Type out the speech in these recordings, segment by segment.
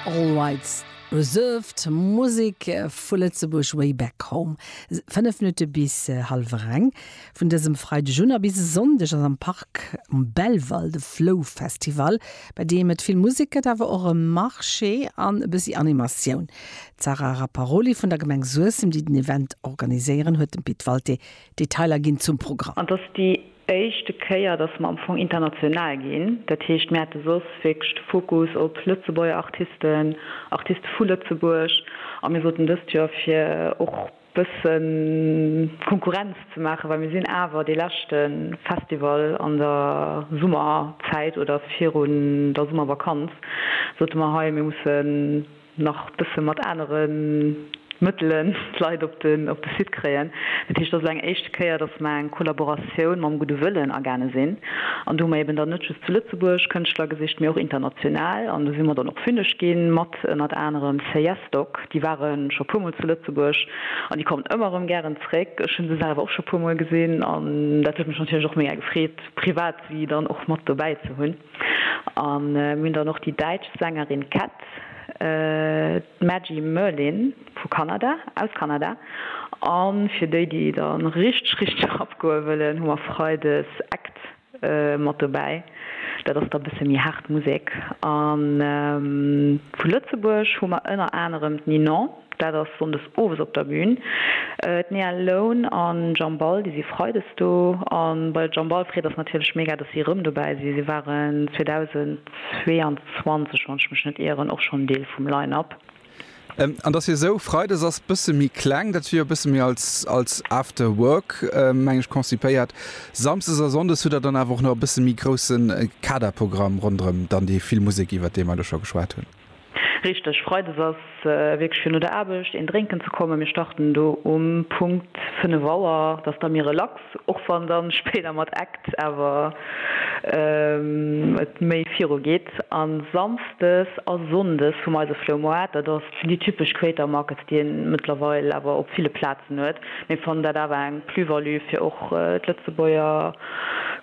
All Rights Reserved, Musek vu Lëtzebuerg Way Back Home, 5 Minutte bis hallwer eng vun dësem Freideg un a bis e Sonndeg ass am Parc um Belval de Flow Festival, bei deem et vill Musek gëtt, awer och e Marché an e bëssi Animatioun. D'Sarah Rapparoli vun der Gemeng Suessem, déi den Event organiséieren, huet dem Pit Walté Detailer ginn zum Programm. An dass déi éischte Kéier, dass mer am Fong international ginn. Dat heescht, mir hate soss wierklech de Fokus op Lëtzebuerger Artisten, Artiste vu Lëtzebuerg. A mir soten dëst Joer, fir och bësse Konkurrenz ze maachen, well mir sinn awer dee leschte Festival an der Summerzäit oder virun der Summervakanz, sote mer, hei, mir mussen nach bësse mat anere Mëttelen d'Leit op de Site kréien. Dat heescht, et ass elo eng éischte Kéier, datt mer eng Kollaboratioun mam gudde Wëllen agaange sinn. An do hu mer eben dann net just zu Lëtzebuerg Kënschtler gesicht, mee och international. An do si mer dann och fünneg ginn mat ënnert anerem Seyesdok. Déi ware scho e puermol zu Lëtzebuerg an déi kommen ëmmer erëm gären zréck. Ech hu se selwer och scho e puermol gesinn an dat huet mech natierlech och mega gefreet, privat si dann och mat dobäi ze hunn. A mir hunn dann och déi däitsch Sängerin Cat, d'Maggie Merlin vu Kanada, aus Kanada. A fir déi, déi et dann richteg, richteg rapgoe wëllen, hu mer Freides Act mat dobäi. Dat ass da bësse méi haart Musek. A vu Lëtzebuerg hu mer ënner anerem d'Ninon. Dat ass sonndes owes op der Bün. D'Nea Lone an Jam Ball, déi si freides do. A bei der Jam Ball freet eis natierlech mega, dass si erëm dobäi sinn. Si waren 2022, wann ech mech net ieren, och schonn Deel vum Line-Up. An dass hir Show freides ass, bësse méi kleng, dat wier e bësse méi als After Work, meng ech, konzipéiert. Samsdes a Sonndes hutt der dann awer och nach e bësse méi grousse Kaderprogramm ronderëm dann déi vill Musek, iwwert déi mer elo scho geschwat hunn. Richteg, Freides ass wierklech fir no der Aarbecht een drénken ze kommen. Mir starten do um Punkt 5 Auer, dat ass da méi relax, och wann dann spéider mat Act awer et méi viru geet. An Samsdes a Sonndes hu mer eise Floumoart, dat ass déi typesch Creator Markets, déi een mëttlerweil awer op ville Plazen huet. Mir fannen dat awer eng Plus-value fir och d'Lëtzebuerger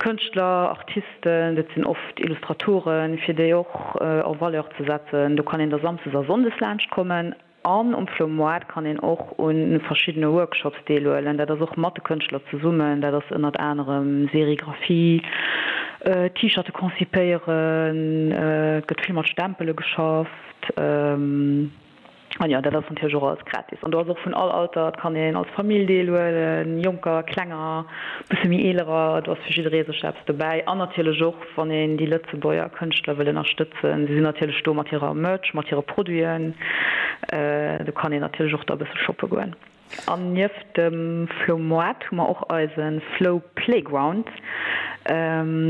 Kënschtler, Artisten. Dat sinn oft Illustratoren, fir déi och en Valeur ze setzen. Do kann een da samsdes a sonndes laanscht kommen. An um Flo Moite kann een och un verschiddene Workshops deelhuelen. Dat ass och mat de Kënschtler zesummen. Dat ass ënnert anerem Serigraphie, T-Shirte konzipéieren, et gëtt vill mat Stempele geschafft. An jo, dat ass natierlech och alles gratis. An do ass och vun all Alter, et kann een als Famill deelhuelen, Jonker, Klenger, bësse méi Eelerer, do ass fir jidderee sech eppes dobäi. An natierlech och, wann een déi Lëtzebuerger Kënschtler wëll ënnerstëtzen, si sinn natierlech do mat hirer Merch, mat hire Produiten, do kann een natierlech och da bësse shoppe goen. An nieft dem Flow Moite hu mer och eise Flow Playground.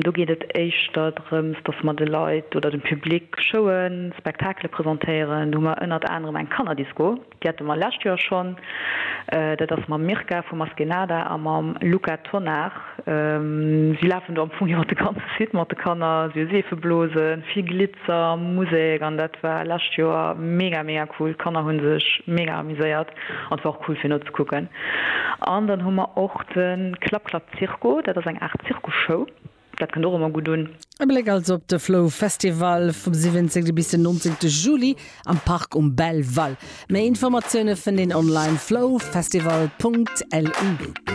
Do geet et éischter drëms, dass mer de Leit oder dem Public Showen, Spektakele presentéieren. Do hu mer ënnert anerem eng Kannerdisco, déi hate mer lescht Joer schonn. Dat ass mam Mirka vu Maskenada a mam Luca Tonnar. Si lafen do am Fong jo mat de ganze Site, mat de Kanner, si hu Seefeblosen, vill Glitzer, Musek an dat war lescht Joer mega mega cool. D'Kanner hu sech mega amuséiert an et war och cool fir nozekucken. An dann hu mer och de Klapp Klapp Zirco, dat ass eng Aart Zirkusshow, dat kënnt och ëmmer gutt un. E Bléck also op de Flow Festival vum 17 bis den 19 Juli am Park um Belval. Méi Informatioune fënnt een online, flowfestival.lu.